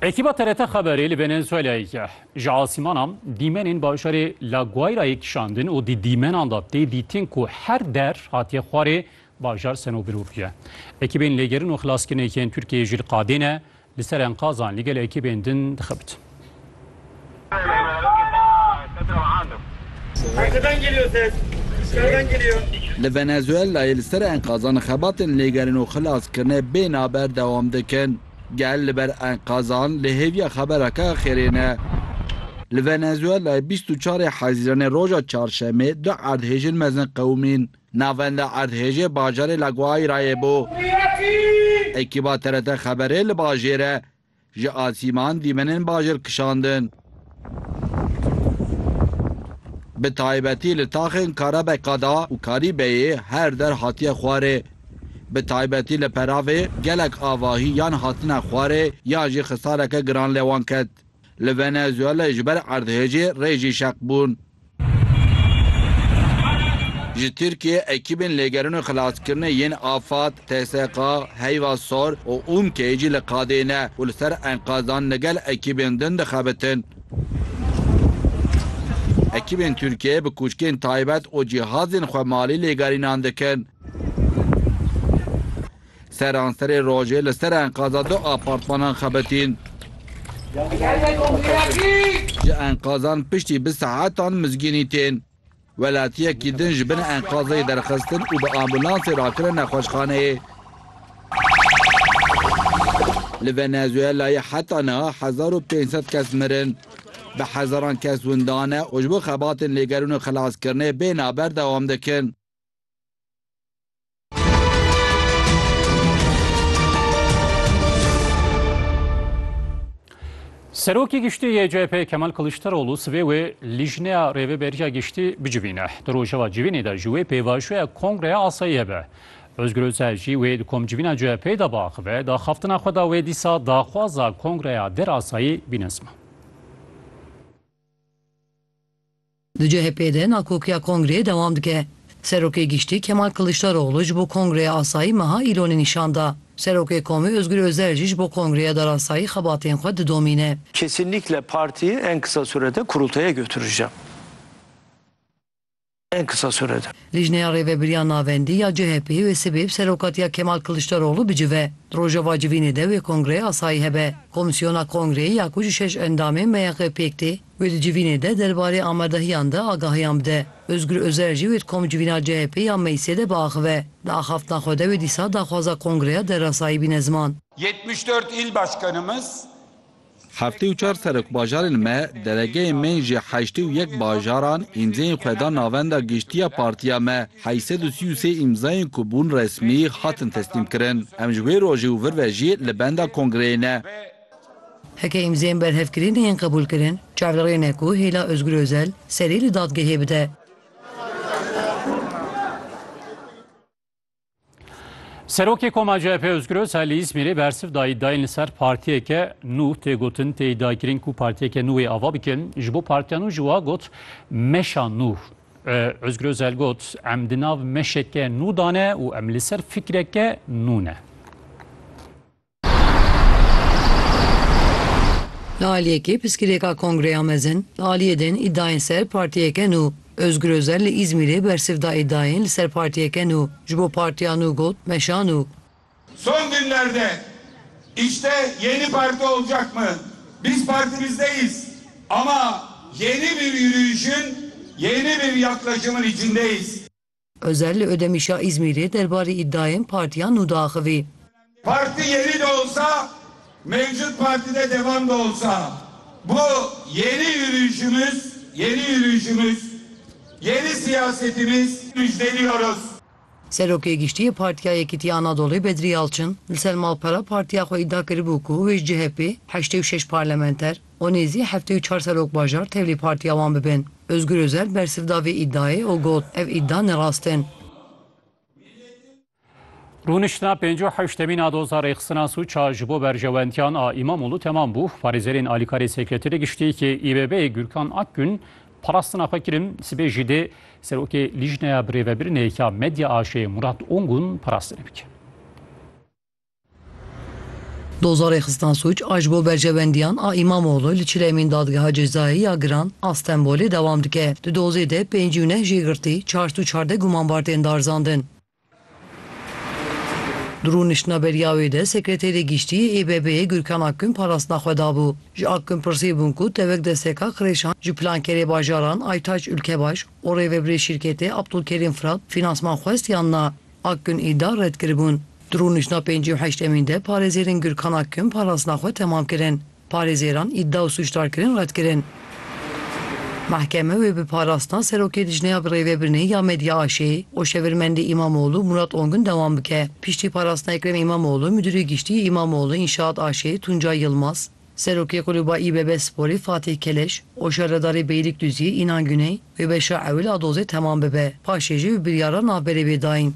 Ekîba TRT Xeberê li Venezuelayê ye. Ji asîmana dîmenên bajarê La Guairayê kişandin û di dîmenan de tê dîtin ku her der hatiye xwarê bajar seno birûpiye. Ekîbên lêgerin û xilaskirinê yên Tirkiyeyê jî li qadê ne, li ser enqazan li gel ekîbên din dixebitin. Li Venezuelayê li ser enkazan xebatên lêgerîn û xilaskirine bê naber dewam dikin. Gel li ber enkazan li hêviya xeberake axêrê ne. Li Venezuelayê bîst û çarê Hezîranê roja Çarşemê du erdhêjên mezin qewimîn navenda erdhêjê bajarê La Guairayê bû. Ekîba TRT Xeberê li bajêre Ji asîman dîmenên bajêr kişandin. Bi taybetî li taxên Karebekada û Karîbeyê her der hatiye xwarê. Bi taybetî li Peravê gelek avahî yan hatine xwarê yan jî xisareke giran li wan ket. Li Venezuelê ji ber erdhêjê rê jî şeq bûn. Ji Tirkiyê ekîbên lêgerin û xilaskirinê yên Afad, TSK, Heyva Sor û UMK'ê jî li qadê ne û li ser enqazan li gel ekîbên din dixebitin. Ekîbên Tirkiyeyê bi kûçkên taybet û cihazên xwemalî lêgerînan dikin. Seranserê rojê li ser enqaza du apartmanan xebitîn. Ji enqazan piştî bi saetan mizgînî tên. Welatiyekî din ji bin enqazê derxistin û bi ambûlansê rakirine nexweşxaneyê. Li Venezuelayê heta niha hezar û pênc sed kes mirin. Bi hezaran kes windane û ji bo xebatên lêgerûn û xelaskirinê bê navber dewam dikin. Serokê Giştî yê CHP Kemal Kiliçdaroglu sibê wê Lîjneya Rêveberiya Giştî bicivîne. Di rojeva civînê de ji wê pêvajoya Kongreya Asayiyê be. Ozgur Özel jî wê di komcivîna CHP'ê de biaxive, di axaftina xwe de wê dîsa daxwaza Kongreya Der Asayî bîne ziman. Di CHP'ê de nakokiya kongreyê dewam dike. Serokê Giştî Kemal Kiliçdaroglu ji bo Kongreya Asayî meha îlonê nîşan da. Serokê komê Ozgur Ozel jî ji bo Kongreya Derasayî xebatên xwe didomîne. Kesinlikle partiyi en kısa sürede kurultaya götüreceğim. En kısa sürede. Lijneya Rêvebiriya Navendî ya CHP'ê wê sibê bi serokatiya Kemal Kiliçdaroglu bicive. Di rojeva civînê de wê Kongreya Asayî hebe. Komîsyona Kongreyê ya ku ji şeş endamên MYX'ê pêk tê, Wê di civînê de derbarê amerdehiyan de agahiyan bide. Ozgur Ozer jî wê di komcivîna CHP'ê ya meclisê de biaxive. Di axaftina xwe de wê dîsa daxwaza kongreya derasayî bîne ziman. Yetmiş dört il başkanımız. Heftê û çar serekbajarên me, delegeyên me yên ji heştê û yek bajaran îmzeyên xwe dan navenda giştiya partiya me. Heyî sed û sî û sê îmzayên ku bûn resmî, hatin teslîmkirin. Em ji wê rojê û vir ve jî li benda kongreyê ne. Heke îmzeyên berhevkirî neyên qebûlkirin, çav li rê ne ku hêla Ozgur Ozel serî li dadgehê bide. Serokê Koma CHP Ozgur Ozel li Îzmîrê bersiv da îdiayên li ser partiyeke nû tê gotin tê îdiakirin ku partiyeke nû wê ava bikin ji bo partiya nû jî wa got meşa nû. Ozgur Ozel got em di nav meşeke nû dane û em li ser fikreke nû ne. Li aliyekê piskilêka Kongreya Mezin li aliyê din îdayên ser partiyeke nû. Ozgur Ozel li Îzmîrê bersiv da îdayên li ser partiyeke nû ji bo partiya nû got meşa nû. Son günlerde işte yeni parti olacak mı? Biz partimizdeyiz ama yeni bir yürüyüşün, yeni bir yaklaşımın içindeyiz. Ozel li Ödemişa Îzmîrê derbarê îdayên partiya nû diaxivî. Parti yeni de olsa mevcut partide devam da olsa bu yeni yürüyüşümüz yeni yürüyüşümüz yeni siyasetimiz müjdeliyoruz. Serokê Giştîyê Partiya Yekîtî Anadolê Bedrî Yalçin li ser malpera partiya xwe îda kiribû ku wê ji CHPê heştê û şeş parlamenter, û nêzî heftê û çar serokbajar tevlî partiya wan bibin. Ozgur Ozel bersiv da vê îdiayê û got, Ev îdia nerast in. Rûniştina pêncî û heştemîna doza rêxistina sûca ji bo berjewendiyan a Îmamoglû temam bû. Parêzerên alîkarê Sekreterê Giştî yê İBB'ê Gürkan Akgün parastina xwe kirin, sibê jî dê Serokê Lîjneya Birêvebirinê ya Medya AŞ'ê Murat Ongun parastinê bike. Dozerê Xistina Sûc a ji bo berjewendiyan a Îmamoglû li çilemên Dadgeha Cezayê ya Giran a Stenbolê dewam dike. Di dozê de pêncî û neh jê girtî, çar sed û çardeh gumanbar tên darzandin. Di rûniştina beriya wê de Sekreterê Giştî yê ÝBB'ê Gurkan Akgün parastina xwe dabû. Ji Akgün pirsî bûn ku tevek desteka qirêşan ji plankerê bajaran Aytaç Ülkebaş û rêvebirê şîrketê Abdulkerîm Fırat finansman xwest yan na. Akgün îda red kiribûn. Di rûniştna pêncî û heştemîn de parêzêrên Gürkan Akgün parastina xwe temam kirin. Parêzêran îda û sûcdarkirin red kirin. Mehkeme wê bi parastina Serokê Lijneya Birêvebirinê ya Medya AŞ û Şevirmendê Îmamoğlu Murat Ongün dewam bike. Piştî parastina Ekrem Îmamoğlu, Midûrê Giştî yê Îmamoğlu Înşaat AŞ'ê Tuncay Yılmaz, Serokê Kulûba İBB Sporî Fatih Keleş û Şerredarê Beyrîkduziyê Înan Güney wê beşa ewil a dozê temam bibe, paşê jî bi biryara navberê bê dayîn.